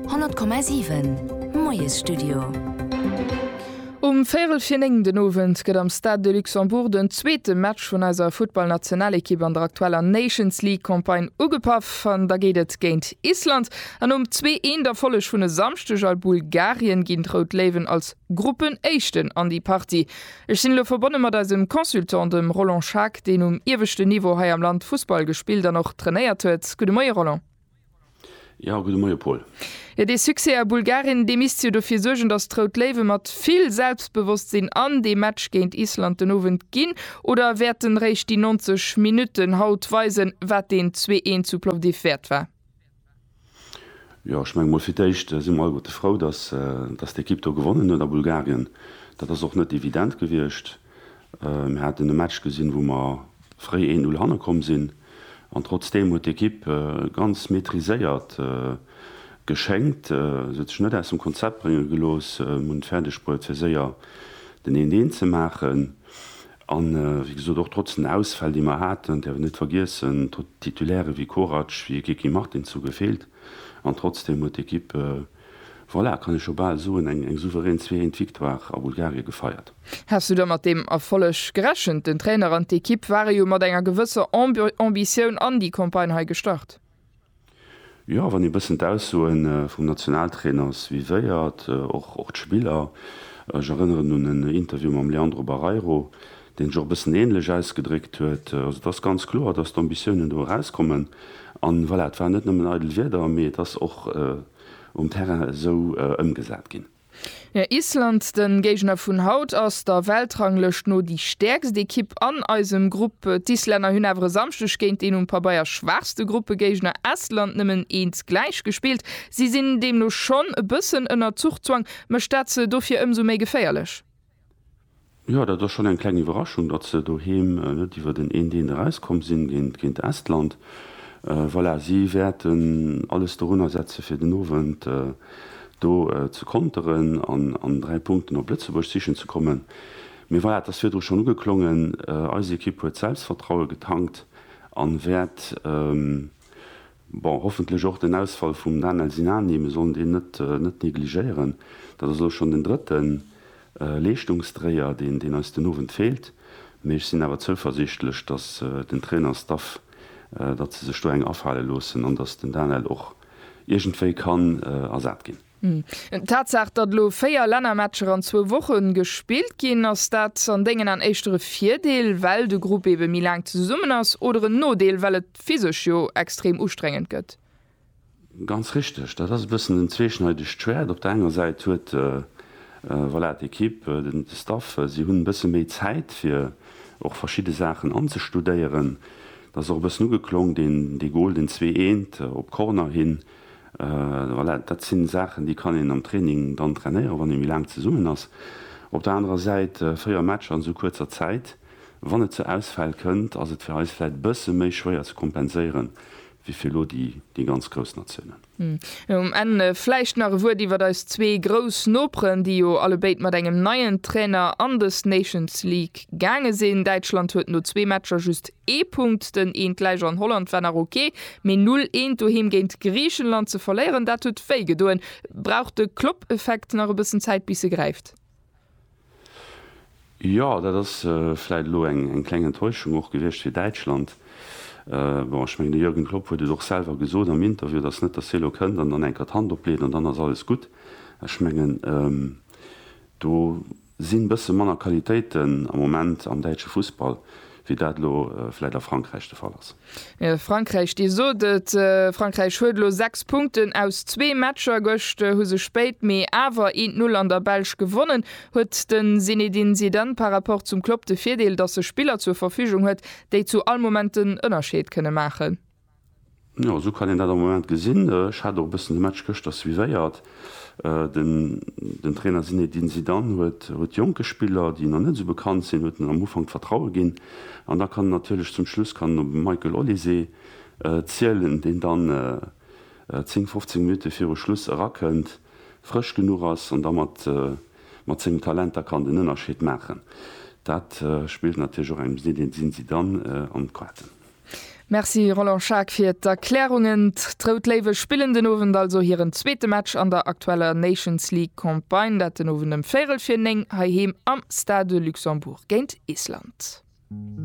100,7 Moiesstudio. Um véierel fir néng den Owend gëtt am Stade de Luxembourg den zweete Match vun eiser Futtballnationalekipp an der aktueller Nations League Campagne ugepaff. An da geet et géint Island. An nom zwee Eent Erfolleg vun e Samschdeg a Bulgarien ginn d'Rout Léiwen als Gruppenéischten an déi Partie. Ech sinn elo verbonne mat eisem Consultant, dem Roland Schaack, deen um ieweschten Niveau hei am Land Fussball gespillt an och trainéiert huet. Gudde Moie Roland. Jo, gudde Moie Paul. Jo, dee Succès a Bulgarien, dee misst jo dofir suergen, datt d'Rout Léiwe mat vill Selbstbewosstsinn an dee Match géint Island den Owend ginn. Oder wäerten réischt déi 90 Minutten haut weisen, wat deen Zwee-Een zu Plovdiv wäert war? Jo, ech menge mol fir d'éischt si mer alleguerte frou, datt d'Ekipp do gewonnen huet a Bulgarien. Dat ass och net evident gewiescht. Mir haten e Match gesinn, wou mer fréi 1, 0 hanne komm sinn an trotzdeem huet d'Ekipp ganz maîtriséiert geschéngt. Se huet sech net aus dem Konzept brénge gelooss, hunn et fäerdeg bruet fir séier den 1, 1 ze maachen. A wéi gesot, och trotz den Ausfäll, déi mer haten, däerf een net vergiessen, Titulaire wéi Korac, wéi e Kiki Martins hu gefeelt. An trotzdeem huet d'Equipe, voilà, kann ee scho bal soen, eng souverän Zwee-Eent Victoire a Bulgarie gefeiert. Häss du da mat deem Erfolleg gerechent? Den Trainer an d'Equipe ware jo mat enger gewësser Ambitioun an déi Campagne hei gestart. Jo, wann ee bëssen d'Aussoe vum Nationaltrainer suivéiert, och d'Spiller, ech erënneren un en Interview mam Leandro Barreiro, deen sech och e bëssen änlech ausgedréckt huet. Also et ass ganz kloer, datt d'Ambitiounen do erauskommen. An voilà, et waren net nëmmen eidel Wierder, mee et ass och um Terrain esou ëmgesat ginn. Island, den Géigner vun haut, ass der Weltranglëscht no déi stäerkst Ekipp an eisem Grupp. D'Islänner hunn awer e Samschdeg géint deen um Pabeier schwaachste Gruppegéigner Estland nëmmen eens gläich gespillt. Si sinn deemno schonn e bëssen ënner Zuchzwang. Mécht dat se dofir ëmsou méi geféierlech? Jo, dat ass schonn eng kleng Iwwerraschung, datt se doheem net iwwer den een Deen erauskomm sinn géint Estland. Voilà, si wäerten alles dorunner setzen, fir den Owend do ze konteren an an dräi Punkten op Lëtzebuerg sichen ze kommen. Mee voilà, et ass virdru schonn ugeklongen, eis Ekipp huet Selbstvertraue getankt an wäert Bon, hoffentlech och den Ausfall vum Danel Sinani, mir sollen deen net negligéieren. Dat ass elo schonn den drëtte Leeschtungsdréier, deen eis den Owend feelt. Mee ech sinn awer zouversiichtlech, datt den Trainerstaff, datt se sech do eng afale loossen an datt den Danel och iergendwéi kann ersat ginn. D'Tatsaach, datt elo 4 Lännermatcher an zwou Woche gespillt ginn, ass dat an dengen An éischter e Virdeel, well de Grupp ebe méi laang zesummen ass, oder en Nodeel, well et physesch jo extrem ustrengend gëtt? Ganz richteg, dat ass e bëssen en zweeschneidegt Schwäert. Op der enger Säit huet, voilà, d'Ekipp, den Staff, si hunn e bësse méi Zäit fir och verschidde Saachen anzestudéieren. Dat ass och e bëssen ugeklong, dee Gol, deen zwee eent op Corner hin, Voilà, dat sinn Saachen, déi kann een am Training dann trainéieren, wann ee méi laang zesummen ass. Op der anerer Säit, véier Matcher an esou kuerzer Zäit, wann et zu Ausfäll kënnt, ass et fir eis vläicht e bësse méi schwéier ze kompenséieren, wéi fir elo déi ganz grouss Natiounen. Um Enn vläicht nach e Wuert iwwert eis zwee grouss Noperen, déi jo allebéid mat engem neien Trainer an des Nations League gaange sinn. Däitschland huet no zwee Matcher just Ee Punkt, den eent gläich an Holland war nach ok, mee null eent doheem géint Griichenland ze verléieren, dat huet wéi gedoen. Brauch de Klopp-Effekt nach e bëssen Zäit bis e gräift? Jo, dat ass vläit elo eng kleng Enttäuschung och gewiescht fir Däitschland. Bon, ech mengen de Jürgen Klopp huet et och selwer gesot am Interview, et ass net, datt hie elo kënnt an dann eng Kéier d'Hand opleet an dann ass alles gutt. Ech mengen do. Sinn bësse manner Qualitéiten am Moment am däitsche Fussball, wéi dat elo vläit a Frankräich de Fall ass? Frankräich, Dir sot et, Frankräich huet elo 6 Punkten aus zwee Matcher. Gëscht hu se spéit mee awer een d'Null an der Belsch gewonnen. Huet de Zinedine Zidane par rapport zum Klopp de Virdeel, datt e Spiller zur Verfügung huet, déi zu all Moment den Ënnerscheed kënne maachen? Jo, esou kann een dat am Moment gesinn. Ech hat och e bëssen de Match gëschter suivéiert. Den den Trainer Zinédine Zidane huet huet jonke Spiller, déi nach net esou bekannt sinn, huet en am Ufank d'Vertraue ginn. An da kann en natierlech zum Schluss kann en op e Michael Olise zielen, deen dann 10, 15 Minutte viru Schluss erakënnt, frësch genuch ass an da mat mat sengem Talent da kann den Ënnerscheed maachen. Dat spillt natierlech och engem Zinédine Zidane an d'Quaten. Merci Roland Schaack fir d'Erklärungen. D'Rout Léiwe spillen den Owend also hiren zweete Match an der aktueller Nations League Campagne, dat den Owend ëm véirel fir 9 heiheem am Stade de Luxembourg géint Island.